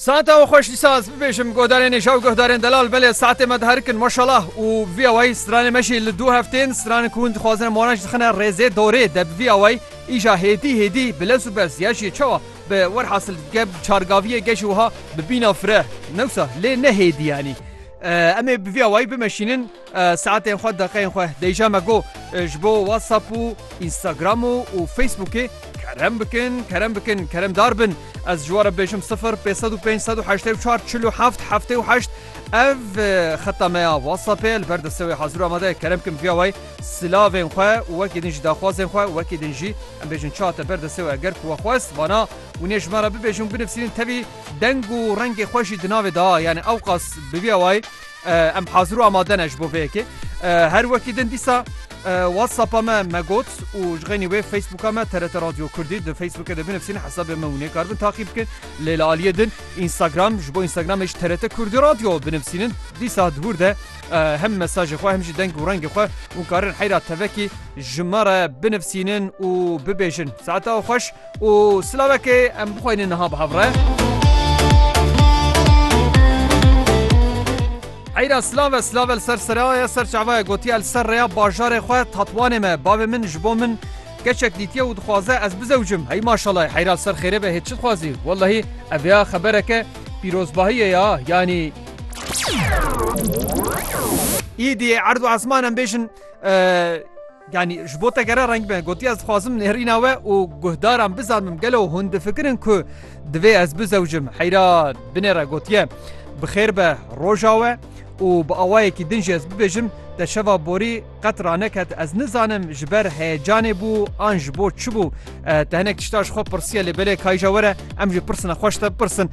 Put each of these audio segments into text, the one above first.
Saeta û xweş dîsa ez bibêjim godarên nêja û guhdarên delal belê saetê me diherikin maşalah û bi vî awayî stranê me jî li dû heftên stranin ku hûn dixwazin em wan jî dixine rêzê dorê de bi vî awayî îja hêdî hêdî bi lez û bez ya jî çawa bi wer hasil dike bi çargaviyê ge jî wiha bi bîna fireh newsa lê ne hêdî yanî em ê bi vî awayî bimeşînin Saetên xwe, deqeyên xwe dêja me got. Ji bo WhatsApp û Instagram û û Facebookê kerem bikin, kerem bikin, keremdar bin. Ez ji we re bêjim sifir pênc sed û pênc sed û heştê û çar çil û heft heftê û heşt ev xeta me ya WhatsApp e li ber destê wê hazir û amade ye. Kerem bikin viya wê silavên xwe û wekî din jî daxwazên xwe û wekî din jî em bêjin çi hate ber destê wê eger ku we xwest vana wînê ji me re bibêjin û binivîsînin tevî deng û rengê xwe jî di navê da. Yanî ewqas bi viya wê. Em hazir û amade ne ji bo vê yekê. Her wekî din dîsa WhatsAppa me me got û ji xênî wê Facebooka me TRT Radio Kurdî di Facebookê de binivîsîne hesabê me hûnê karbin taqî bikin. Lê li aliyê din Instagram ji bo Instagramê ji TRT Kurdî Radio binivîsînin. Dîsa di hûr de hem mesajê xwe hem jî deng û rengê xwe hûn karin heyra tevekî ji me re binivîsînin û bibêjin. Saeta xweş. Û silavekê em bixweynin niha bi hev re. Eyra silav e silav e li ser seraya ser çavaya gotiye li ser rêya bajarê xwe tatwanê me bavê min ji bo min keçek dîtiye û dixwaze ez bizewcim hey maşallah heyra li ser xêrê be hê çi dixwazî wellahî ev ya xebereke pîrozbahiyê ya yanî Îdî erd û esman em bêjin Yanî ji bo te gere reng be, gotiye ez dixwazim nêrîna we û guhdaran bizanim gelo hûn difikirin ku divê ez bizewicim. Heyra binêre gotiye, Bi xêr be roja we û bi awayekî din jî ez bibêjim, te şeva borî qet raneket ez nizanim ji ber heyecanê bû an ji bo çi bû. Te hinek tişta ji xwe pirsiye lê belê kayîja were em jî pirsina xwe ji te bipirsin.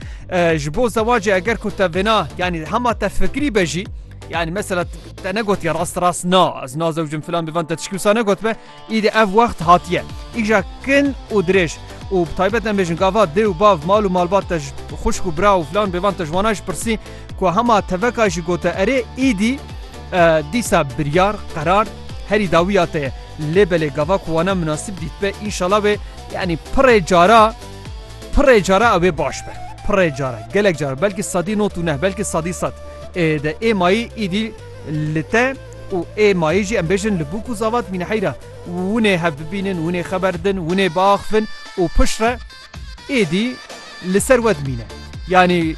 Ji bo zewacê eger ku te vêna yanî hema te fikirî be jî, Yani mesela te negot ya rast rast na ez nazewcim filan bivan te tişkî wisa negot be îdî ev wext hatiye îja kin û dirêj û bi taybet em bêjin gava dê û bav mal û malbat te xuşk û bira û filan bivan te ji wana ji pirsî ku hema teveka jî gote erê îdî dîsa biryar qerar herî dawiya te ye lê belê gava ku wana münasib dît be înşala wê yanî pirê cara pirê cara ew ê baş be pirê cara gelek cara belkî sedî not û neh belkî sedî sed De ê mayî îdî li te û ê mayî jî em bêjin li bûk û zavat mîne heyra. Winê hev bibînin, winê xeber din, winê biaxivin û piştre êdî li ser we dimîne. Yanî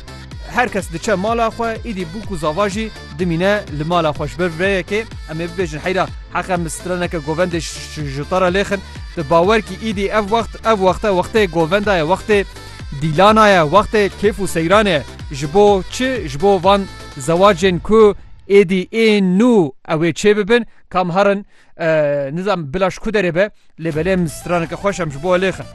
her kes diçe mala xwe îdî bûk û zava jî dimîne li mala xwe ji ber rêyekê em ê bibêjin heyra heqe min straneke govendê ji te re lêxin. Di bawer kî îdî ev wext ev wexte wextê govenda ye wextê Dîlana ye wextê kêf û seyran e. Ji bo çi ji bo van zewacên ku êdî ên nû ew ê çêbibin kam herin nizam bila ji ku derê be lê belê em straneke xweş em ji bo lêxin.